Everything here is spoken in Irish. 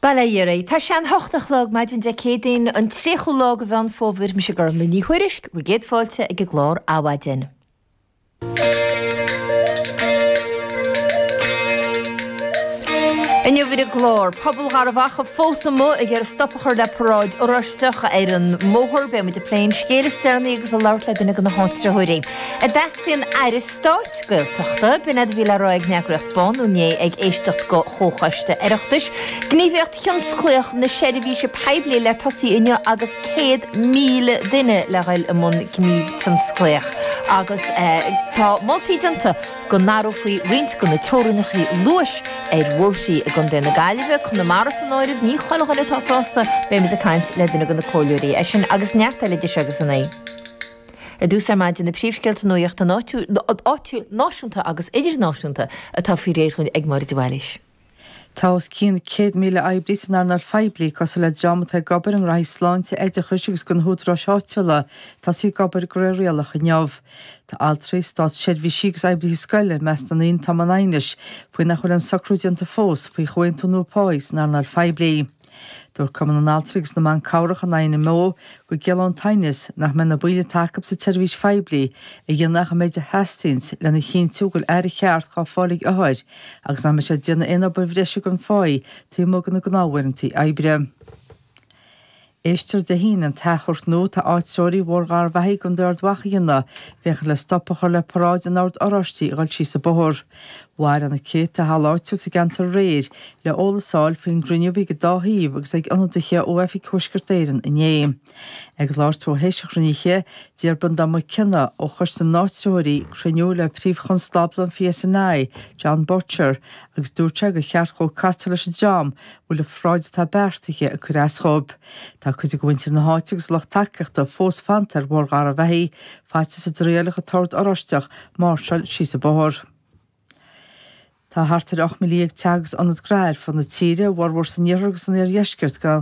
Bail ó Dhia oraibh. Tá sé an hocht a chlog maidin Dé Céadaoin, an tríochú lá de Mheán Fómhair. Mise Gormfhlaith Ní Thuairisg, bhur gcéad fáilte ag an gclár Adhmhaidin. Inniu ar an gclár, pobal Gharbh Achaidh fós amuigh ag iarraidh stop a chur le paráid Oráisteach ar an mbóthar. Beimid ag plé an scéil is deireanaí agus ag labhairt le duine de na háitritheoirí. Teastaíonn Aire Stáit Gaeltachta, b'in é a bhí le rá ag an eagraíocht Bánú inné ag éisteacht de Chomhchoiste Oireachtais, Gníomhaíocht Thionsclaíoch na Seirbhíse Poiblí le tosaí inniu agus 100,000 duine le dhul i mbun gníomh tionsclaíoch agus tá moltaí déanta go n-athrófaí roinnt de na teorainneacha luais ar bhóithrí i gContae na Gaillimhe, Conamara san áireamh. Ní chuile dhuine atá sásta, beimid ag caint le duine de na comhairleoirí é sin agus neart eile idir seo agus a naoi. Ar dtús ar maidin na príomhscéalta nuachta áitiúil, náisiúnta agus idirnáisiúnta atá faoi réir dúinn ag Máire de Bhailís. Tá os cionn 100,000 oibrí san earnáil phoiblí, cosúil le dream atá ag obair i ngnóthaí sláinte, oideachais agus do na húdaráis áitiúla, tá siad ag obair de réir rialach inniu. Tá altraí, státseirbhísigh agus oibrithe scoile i measc na ndaoine atá i mbun aighnis faoi nach bhfuil an socrú déanta fós faoi chomhaontú nua páí san earnáil phoiblí. Dúirt Cumann na nAltraí agus na mBan Cabhrach, an INMO, go gciallaíonn an t-aighneas nach mbeidh na baill atá acu sa tseirbhís phoiblí ag déanamh ach an méid a theastaíonns lena chinntiú go bhfuil aire cheart dhá fáil ag othair agus nach mbeidh siad ag déanamh aon obair bhreise gan pháí taobh amuigh de na gnáth-uaireantaí oibre. Éistfear Dé hAoine an t-achomharc nua atá áitreoirí Bhóthar Gharbh Achaidh i gContae Ard Mhacha a dhéanamh féachaint le stop a chur le paráid an Ord Oráistigh a dhul síos an bóthar. Bhailigh na céadta i halla áitiúil sa gceantar aréir le eolas a fháil faoin gcruinniú a bhí ag an dá thaobh agus ag ionadaithe ó Oifig Thuaisceart Éireann inné. Ag labhairt dó tar éis an chruinnithe, d'iarr Breandán Mac Cionnaith ó Choiste na nÁitritheoirí cruinniú le Príomh Chonstábla an PSNI, Jon Boutcher, agus dúirt sé gur cheart dhó castáil leis an dream a bhfuil an pharáid atá beartaithe ag cur as dhóibh. Tá cuid de mhuintir na háite agus a lucht tacaíochta fós fanta ar Bhóthar Gharbh Achaidh, faitíos go dtriailfeadh an tOrd Oráisteach máirseáil síos an bóthar. Tá thart ar 18,000 teach agus ionad gnó ar fud na tíre, a bhformhór san iarthar agus san iardheisceart, gan